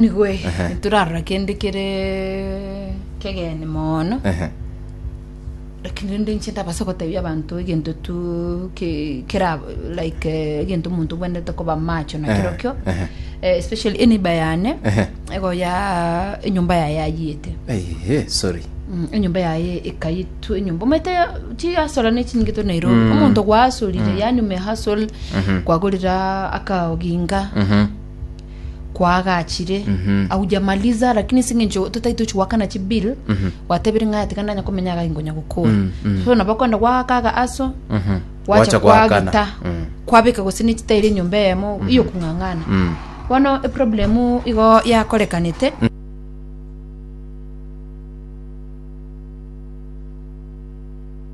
Nigo eh, Ehe. torarora kende kere kegeni mono Ehe. lakini rende inche ndabasa gotebia abanto egento tu ke- kera like eh, egento omonto obwenerete koba macho na Ehe, kero kio ehe. Eh, especially eniba yane Ehe. ego ya enyomba yaye ayiete Ehe, sorry Mm, enyomba yaye ekayitu enyomba omete chiasora ne chinyinge to nairobi Mm. omonto gwasorire yani umehasol kwagorera akaoginga Mhm. kwaagachire Mhm. aujamaliza lakini ase eng'encho totai tochi goakana chibill Mhm. gwatebire ng'a tiga ndanya komenya iga inkonya gokora Mm, mm. so nabo okogenda gwagakaga aso Mhm. gwacha Gwacha gwagita gwakana. Mm. kwabeka gose nechitairi enyomba eyemo iyo kung'ang'ana Mm. bono eproblemu igo yakorekanete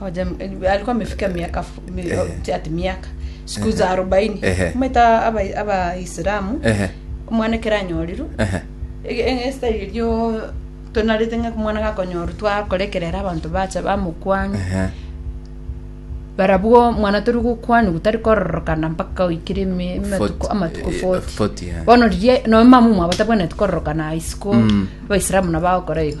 Oja m- eh, alikuwa amefika miaka fu- mi- Ehe. oh, ati miaka siku Ehe. za arobaini Ehe. maita aba- abaisilamu Ehe. omwana ekero anyorirwe Ehe. e- e- esitari erio tonarete ng'a omwana gakonyorwa twakora ekerero abanto bacha bamokwana Ehe. barabwo omwana tori gokwanigwa tari kororokana mpaka oikire eme- amatuko Forty, amatuko eh, 40 forty, eh. bono riria noe mama omwabo tabwenereti kororokana isiko Mm. abaisilamu nabo bagokora igo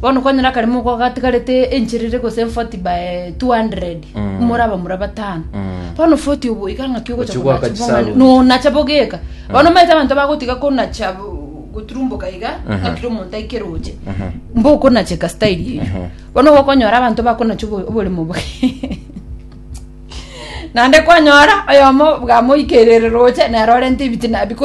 Bono kwanyora kare moko gatigarete enchera ere gose 40 by 200 Mm. more abamura batano Mm. bono 40 obo iga ng'aki ogocha Ochigwa konacha akachi bong'ani. sauni. nonacha bogeka bono maete abanto bagotiga konacha bo- goturumboka iga Mhm. ng'akire omonto aikere oche Mhm. mbokonacheka style eyo Mhm. bono gokonyora abanto bakonacha obo- oboremo bwe naende kwanyora oyomo bwamoikerere roche nero orente ebitina because